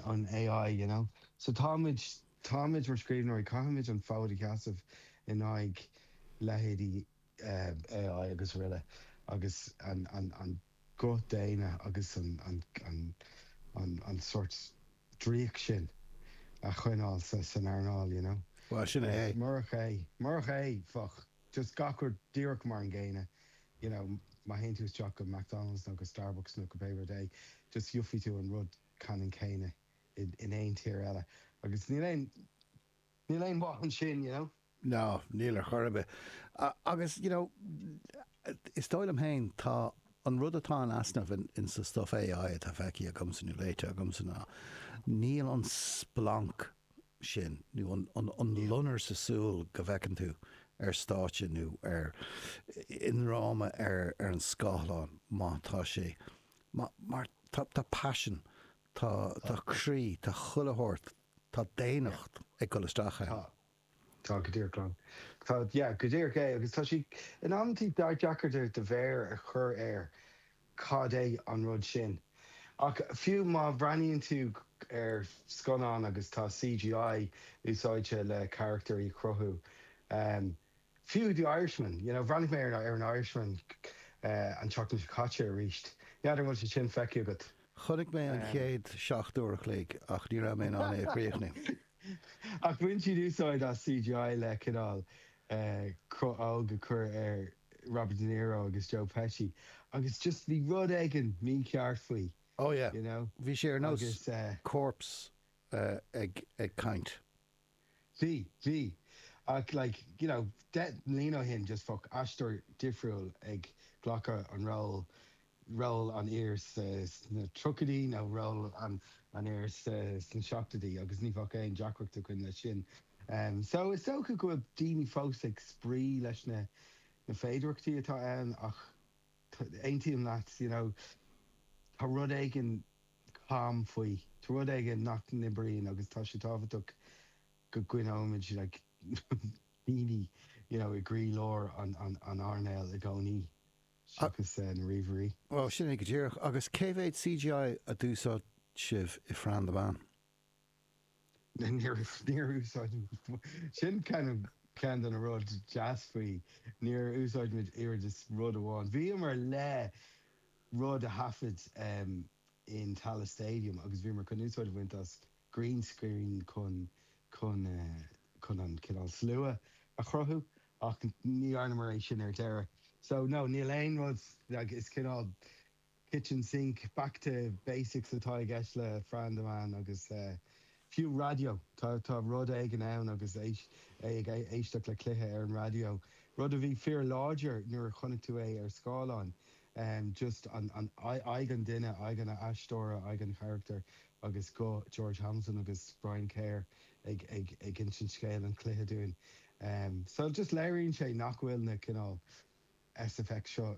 an AI, you know. So táimid, táimid mar scríbhneoirí, caithfimid an fód a sheasamh in aghaidh leithéidí AI agus araile agus an, an, an guth daonna agus an, an, an, an, an sort draíocht sin a choinneáil sa, san earnáil, you know. Bhuel, sin é é. Murach é, murach é, bheadh just gach rud díreach mar an gcéanna, you know, má théann tú isteach go McDonald's nó go Starbucks nó go pé rud é, just gheofaidh tú an rud ceannann céanna in aon tír eile agus níl aon níl aon mhaith ansin you know. No, níl ar chor ar bith. Agus you know, is dóigh liom féin, tá an rud atá in easnamh in in sa stuff AI atá feicthe agamsa nó léite agamsa ná, níl an splanc sin nó an an an loinnir sa súil go bhfeiceann tú ar stáitse nó ar i ndráma ar ar an scáileán má tá sé mar, mar, tá, tá paisean, tá, tá croí, tá chuile shórt, tá Yeah. daonnacht ag dul isteach ann. Tá. Tá go díreach ann. Tá, yeah, go díreach é agus tá sé, in amantaí deacair do, do mhéar a chur air cad é an rud sin. Ach fiú má bhreathnaíonn tú ar scannán agus tá CGI úsáidte le carachtair a chruthú, Fiú The Irishman, you know, bhreathnaigh mé ar an Irishman an tseachtain seo caite arís, n'fheadar an bhfuil sé sin feicthe agat? Chonaic mé an chéad seacht uair a chloig ach ní raibh mé in ann é a chríochnú. Ach bhain siad úsáid as CGI le cineál cruth óg a chur ar Robert De Niro agus Joe Pesci agus just bhí rud éigin mícheart faoi, Oh yeah, you know, bhí sé ar nós corpse ag caint. Bhí, bhí. Ach like, you know, deich mbliana ó shin, just bheadh aisteoir difriúil ag glacadh an ról, ról an fhir sna tríochaidí nó ról an fhir sna seachtóidí agus ní bheadh aon deacracht againn leis sin. So is dócha go bhfuil daoine fós ag spraoi leis na féidireachtaí atá ann ach aontaím leat, you know, tá rud éigin, cam faoi. Tá rud éigin nach n-oibríonn agus tá sé tábhachtach go gcoinneoimid daoine you know i gcroílár an earnáil i gcónaí seachas na ríomhairí. Bhuel, sin é go díreach. Agus cé mhéad CGI a d'úsáid sibh i Fran the Man? Níor úsáid, sin ceann de na rudaí deasa faoi, níor úsáid muid oiread is rud amháin. Bhíomar le rud a thaifead in Tallaght Stadium agus bhíomar chun úsáid a bhaint as green screen chun an cineál slua a chruthú ach ní dhearnamar é sin ar deireadh. So no, níl aon rud, is cineál kitchen sink, back to basics atá i gceist le Fran, a mhac agus fiú raidió, tá rud éigin ann agus é ag éisteacht le cluiche ar an raidió, rud a bhí fíor láidir nuair a chonaic tú é ar scáileán, just aghaidh an duine, aghaidh an aisteora, aghaidh an charachtair agus guth George Hamilton agus Brian Kerr ag insint scéal an chluiche dúinn. So just léiríonn sé nach bhfuil na cineál SFX seo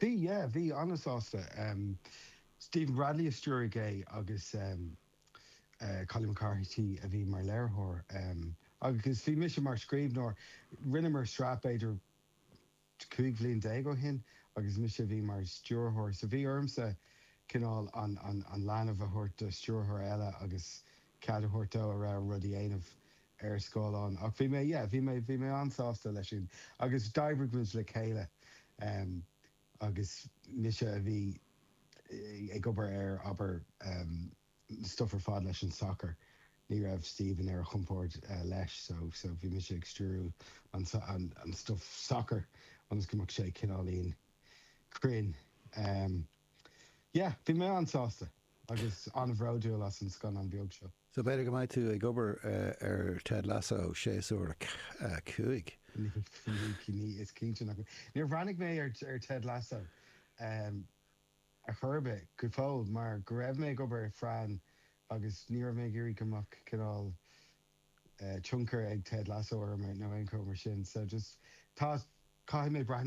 Bhí, yeah, bhí an-sásta. Stephen Bradley a stiúraigh é agus Collie McCarthy a bhí mar léiritheoir agus bhí mise mar scríbhneoir. Rinneamar sraith b'fhéidir 15 bhliain ó shin agus mise a bhí mar stiúrthóir so bhí ormsa cineál an leanbh a thabhairt do stiúrthóir eile agus cead a thabhairt dó a rogha rud a dhéanamh. ar scáileán. Ach bhí mé, yeah, bhí mé, bhí mé an-sásta leis sin. Agus d'oibrigh muid le chéile, em, agus mise a bhí ag obair ar, abair, em, stuff ar fad leis an sacar, ní raibh Stephen ar a chompord leis, so, so bhí mise ag stiúrú an, an, an stuff sacair, ionas go mbeadh sé cineáilín cruinn. Em, yeah, bhí mé an-sásta. agus an-bhródúil as an scannán beag seo. So b'fhéidir go mbeidh tú ag obair ar Ted Lasso séasúr 5? Ní, is cinnte nach mbeidh. Níor bhreathnaigh mé ar Ted Lasso ar chor ar bith, go fóill, mar go raibh mé ag obair ar Fran agus ní raibh mé ag iarraidh go mbeadh cineál tionchar ag Ted Lasso orm nó aon cheo mar sin. So just tá, caithfidh mé breathnú air.